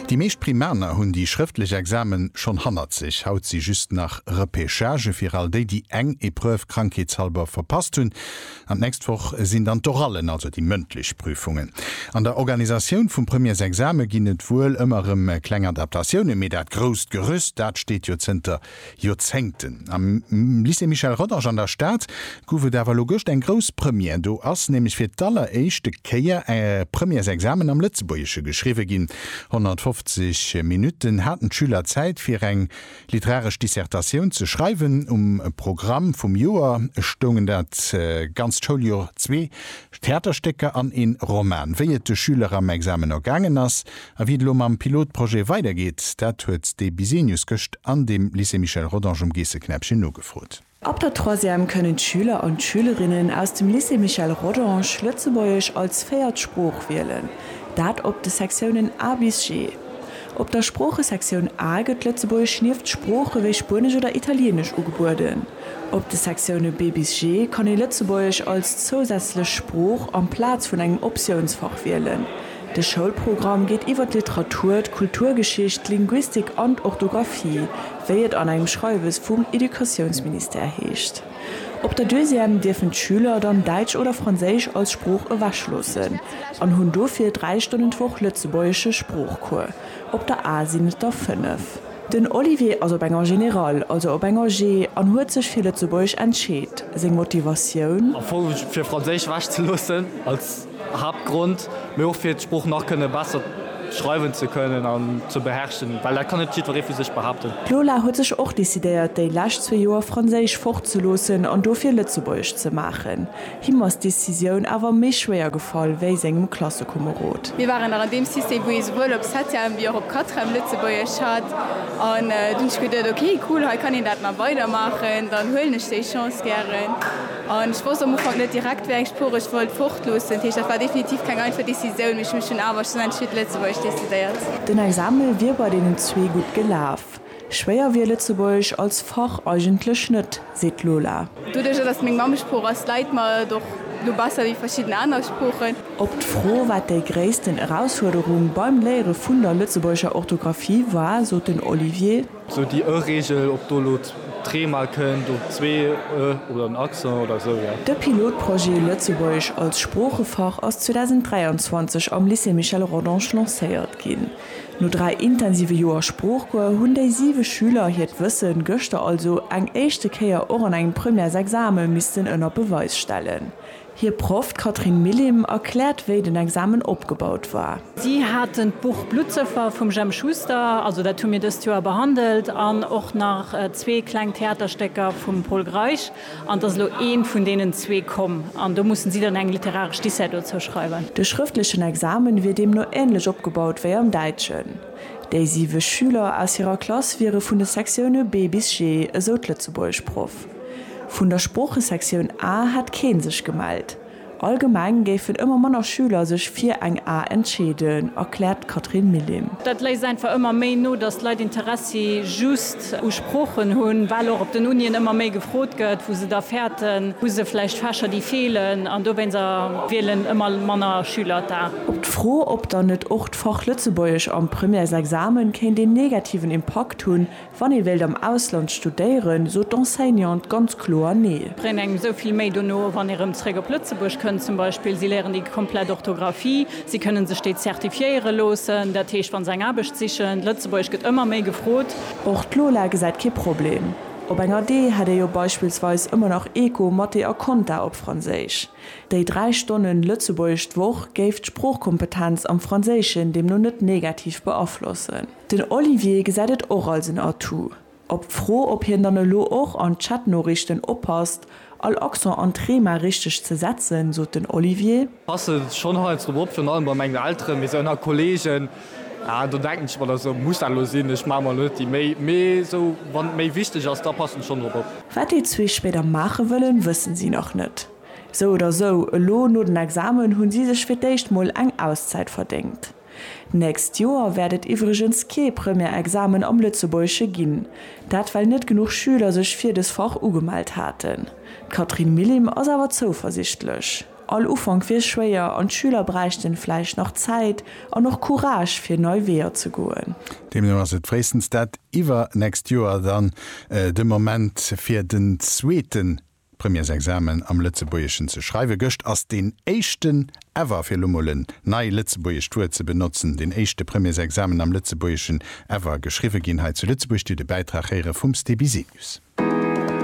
Déi meescht Primaner hunn déi schrëftlech Examen schonn hannert sech. Haut si just nach Repechagë fir all déi, déi eng Epreuve krankheetshalber verpasst hunn. An d'nächst Woch sinn dann d'Orallen, also déi mëndlech Prüfungen. An der Organisatioun vum Premiersexame ginn et wuel ëmmer rëm kleng Adaptatioune, mee dat grousst Gerüst, dat steet jo zënter Joerzéngten. Am Lycée Michel Rodange an der Stad gouf et awer elo gëscht eng grouss Première. Do ass nämlech fir d'alleréischte Kéier e Premièresexamen am Lëtzebuergesche geschriwwe ginn. 150 Minutten haten d'Schüler Zäit, fir eng literaresch Dissertatioun ze schreiwen. Um Programm vum Joer stoungen dat ganzt Schouljoer zwee Theaterstécker an een Roman. Wéi et de Schüler am Examen ergaangen ass, A wéi et elo mam Pilotprojet weidergeet, dat huet de Bisenius gëscht an dem Lycée Michel Rodange um Geesseknäppchen nogefrot. Ab der Troisième kënnen d'Schüler an d'Schülerinnen aus dem Lycée Michel Rodange Lëtzebuergesch als véiert Sprooch wielen, dat op de Sektiounen A bis G. Op der Sproochesektioun A gëtt Lëtzebuergesch nieft Sprooche wéi Spuenesch oder Italieenesch ugebueden. Op de Sektioune B bis G kann ee Lëtzebuergesch als zousätzlech Sprooch amplaz vun engem Optiounsfach wielen. De Schoulprogramm geet iwwer d'Literatur, d'Kulturgeschicht, d'Linguistik an d'Orthografie, wéi et an engem Schreiwes vum Educatiounsministère heescht. Op der Deuxième dierfen d'Schüler dann Däitsch oder Franséisch als Sprooch ewechloossen an hunn dofir dräi Stonnen d'Woch lëtzebuergesche Sproochcours, op der A sinn et der fënnef. Den Olivier ass op enger Generale, also op enger G, an huet sech fir Lëtzebuergesch entscheet. Seng Motivatioun? Am Fong fir Franséisch ewechzeloossen. Haaptgrond, mee och fir d'Sprooch nach kënne besser schreiwen ze kënnen an ze beherrschen, well dat kann net jiddweree vu sech behaapten. D'Lola huet sech och decidéiert, déi lescht zwee Joer Franséisch fortzeloossen an dofir Lëtzebuergesch ze maachen. Him ass d'Decisioun awer méi schwéier gefall wéi sengem Klassekomerod. Mir waren nach an deem System, wou ee souwuel op Septième wéi och op Quatrième Lëtzebuergesch hat an dunn hunn ech geduet, ok cool, hei kann een dat nach weidermaachen, dann huelen ech déi Chance gären. An ech wosst am Ufank net direkt, wéi eng Sprooch ech wollt fortloossen. Dat heescht, dat war definitiv keng einfach Decisioun, mee ech hunn mech dunn awer schonn entscheet, Lëtzebuergesch decidéiert. Den Examen wier bei deenen zwee gutt gelaf. Schwéier wier Lëtzebuergesch als Fach eigentlech net, seet d'Lola. Doduerjer, datt et meng Mammesprooch ass, läit mer et och elo besser wéi verschidden aner Sproochen. Op d'Fro, wat déi gréissten Erausfuerderung beim Léiere vun der lëtzebuergescher Orthografie war, sot den Olivier. Sou déi ë Reegel, ob do elo d'ree mol kënnt, oder zwee ë oder den Accent oder esou, jo. De Pilotprojet Lëtzebuergesch als Sproochefach ass 2023 am Lycée Michel Rodange lancéiert ginn. No dräi intensive Joer Sproochcours hunn déi siwe Schüler hiert Wësse gëschter also eng éischte Kéier och an engem Premièresexame missten ënner Beweis stellen. Hir Proff, d'Catherine Millim, erkläert, wéi den Examen opgebaut war. Si haten d'Buch Bluttsëffer vum Jemp Schuster, also dat hu mir dëst Joer behandelt, an och nach zwee kleng Theaterstécker vum Pol Greisch, an et ass elo eent vun deenen zwee komm, an do mussen si dann eng literaresch Dissert dozou schreiwen. De schrëftlechen Examen wier deemno änlech opgebaut wéi am Däitschen. Déi siwe Schüler aus hirer Klass wiere vun de Sektioune B bis G, esou d'Lëtzebuergeschproff. Vun der Sproochesektioun A hätt kee sech gemellt. Allgemeng géifen ëmmer manner Schüler sech fir eng A entscheeden, erkläert d'Catherine Millim. Dat léisst einfach ëmmer méi no, datt d'Leit Interessi just u Sproochen hunn, well och op den Unien ëmmer méi gefrot gëtt, wou se da fäerten. Hu se vläicht Fächer, déi feelen? An dowéinst wielen ëmmer manner Schüler d'A. Op d'Fro, ob dann net och d'Fach Lëtzebuergesch am Premièresexamen kéint een negativen Impakt hunn, Wann ee wéilt am Ausland studéieren, sot d'Enseignante ganz kloer Nee. Bréngt engem esou vill méi dono, wann ee rëm zréck op Lëtzebuerg kënnt zum Beispill. Si léieren déi komplett Orthografie, si kënnen sech déi zertifiéiere loossen, dat heescht wa se eng Aarbecht sichen. Lëtzebuergesch gëtt ëmmer méi gefrot. Och d'Lola gesäit kee Problem. Op enger Dee hätt ee jo beispillsweis ëmmer nach Eco, Mathé a Konta op Franséisch. Déi dräi Stonne Lëtzebuergesch d'Woch géif d'Sproochkompetenz am Franséischen deemno net negativ beaflossen. Den Olivier gesäit et och als en Atout. Op d'Fro, ob hien dann elo och an Chatnoriichten oppasst, all Accent an d'Thema richteg ze setzen, sot den Olivier. Passe schonn heiansdo op, virun allem bei mengen Elteren, mee esou ënner Kolleegen, ah do denken ech mer da sou, muss dat elo sinn? Ech maache mer elo net déi Méi. Mee esou, wann et méi wichteg ass, da passen ech schonn drop op. Wat déi zwee spéider maache wëllen, wëssen si nach net. Sou oder sou, elo no den Examen hunn si sech fir d'éischt mol eng Auszäit verdéngt. D'nächst Joer wäert et iwwregens kee Première-Examen am Lëtzebuergesche ginn, dat well net genuch Schüler sech fir des Fach ugemellt haten. D'Catherine Millim ass awer zouversichtlech. All Ufank wier schwéier an d'Schüler bräichten vläicht nach Zäit an och Courage fir nei Weeër ze goen. Deemno ass et fréistens dat iwwernächst Joer dann de Moment fir den zweeten D'Premièresexamen am Lëtzebuergeschen ze schreiwen. Gëscht ass deen éischten ever, fir elo mol en nei lëtzebuergescht Wuert ze benotzen, deen éischte Premièresexamen am Lëtzebuergeschen ever geschriwwe ginn. Hei zu Lëtzebuerg. Dir hutt e Bäitrag héiere vum Sté Bisenius.